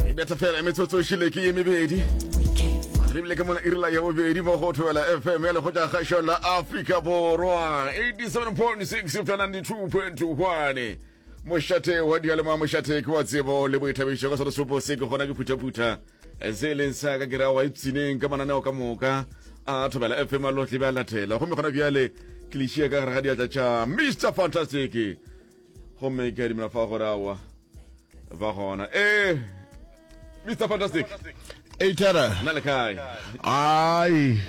e betha fela e metsotso e šile ke ye mebedi lebile ke mona irela ya bobedi mo go thobela fm ya lekgotla kgašo la afrika borwa 87.6 fela 92.1 mošate wa dialema mošate ke wa tsebo le boithabišo ka sone sopo se ke gona ke phuthaphutha se e leng sa ka kera wa ipsineng ka mananeo ka moka a thobela fm a lotlebe a latela gomme gona bjale ke lešia ka gare ga diatla tša mr fantastic gomme ke a dumela fa gore awa ba gona e mr fantastic eitara na le kae ai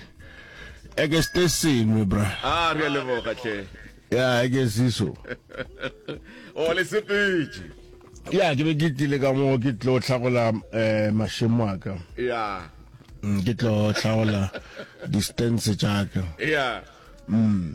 eke ste sengwe bra a re a leboga tle ya eke siso o le sepetše ya ke be ke tlile ka moo ke tlo tlhagola um eh, mashemo a ka ya mm, ke tlo tlhagola distance tša ka ya mm.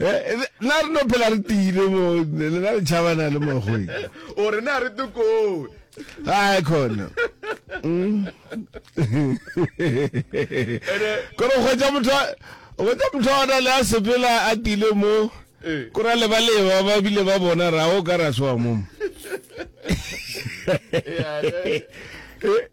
Eh, eh, na re no phela re tiile mo lena le tšhabana le mogweng o re ne a re tokoo ai khona mm. kore o kgwetsa motho o kgwetsa motho a ona le a sepela a tiile mo eh. kore a lebaleba ba bile ba bona ra o ka ra soa momo eh,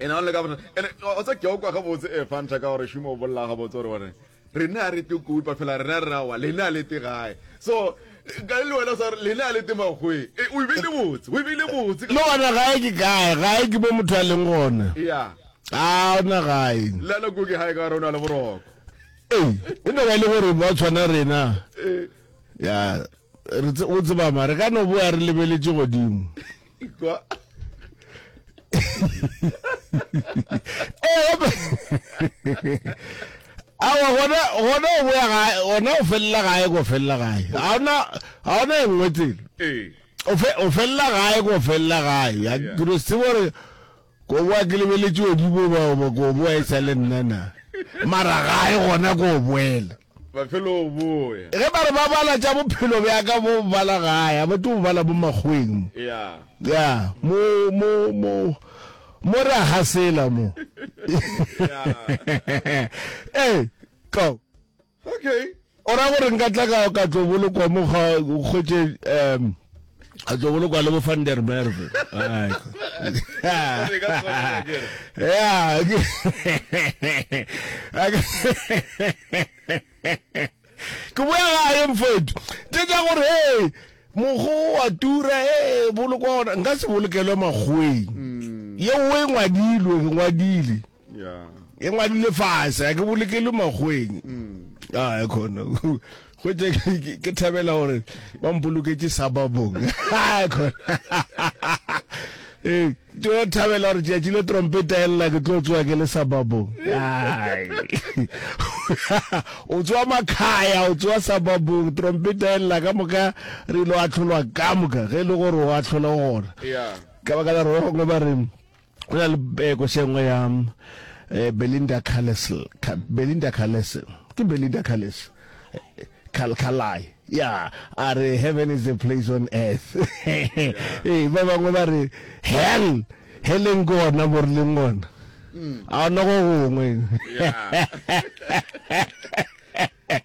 e na le ka bona ene o tsa ke o kwa ga botse e fa ntsha ka gore shimo o bolla ga botse gore bone re ne a re te kupa fela re ne a re wa le ne a le te gae so ka le wena sa le ne a le te magwe e o be le botse o be le botse no ona gae ke gae gae ke bo motho a leng gone ya a ona gae la la go ke gae ka rona le boroko e e no ba le gore ba tshwana rena ya re o tseba mare ka no bo a re lebeletše godimo Ekwa. Eh, awa gona gona o boya gae gona o felela gae go felela gae ga ona ga ona e nngwe tsela ee. o felela gae go felela gae ya kiro se gore Koboa ke lebeletše odimo bao ba koboa e sa le nna na mara ga e gona ko o boela mafelong boe. Ge ba re ba bala tša bophelo bja ka bo bala gae a ba tlo bo bala bo makgweng mo ya ya mo mo mo mo re a gasela mo ya ee ka O ra gore nka tla ka ka tlo bolokwa mo ga kgwetse um a tlo bolokwa le bo van der merve ke boya gae mfetu tse tsa gore hey mogo wa tura e bolokwa gona nka se bolokelwe makgweng mm. ye o e ngwadilwe ke ngwadile e ngwadile fase a ke bolokele makgweng a khona gote ke thabela gore ba mpoloketse sababong khona ee tlo thabela gore tšatši le trompeta elela ke tlo tsoa ke le sababong o tsoa makhaya o tsoa sababong trompeta elela ka moka re ile wa tlholwa ka moka ge e le gore o a tlhola gona ka baka la rogongwe ba reng go na le beko se nngwe ya eh, belinda calesl belinda calese ke belinda calese khalkhalai ya a re heaven is a place on earth ee ba bangwe ba re hell heleng ke ona mo re leng ona mm. a ona go gongwe